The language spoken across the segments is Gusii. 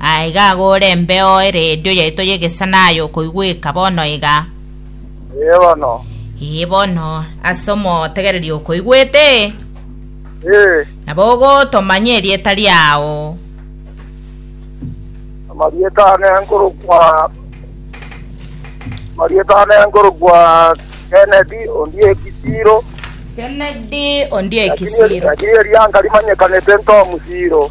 Aa iga agore embeo eredio yaito y'egesana aye okoigweka bono iga. Ee bono. Ee bono, ase omotegereria okoigwete. Ee. Nabo ogotomanya erieta riao. Amarieta ane nkorokwa Amarieta ane nkorokwa Kennedy Ondieki Kisiro. Kennedy Ondieki Kisiro. Lakini eria nkarimanyekane Tom Siro.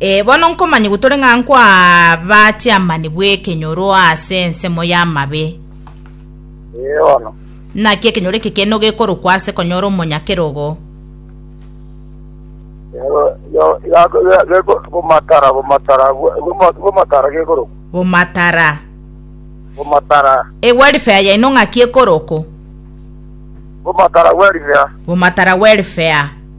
Ee, bono nkomanya gotore ng'a nkwaba chiamani bw'ekenyoro ase ensemo y'amabe. Ee, bono. Naki ekenyoro eke keno gekorokwa ase konyora omonyakerogo. Bomatara, bomatara, bomatara gekorokwa. Bomatara. Bomatara. E welfare yaino ng'aki ekorokwa. Bomatara welfare. Bomatara welfare.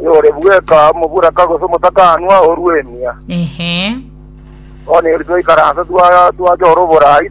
Oyore bweka omoburaka gose omotakaanwa orw'emia. Ehe. Bono erio twaikaransa twa- twachora oborai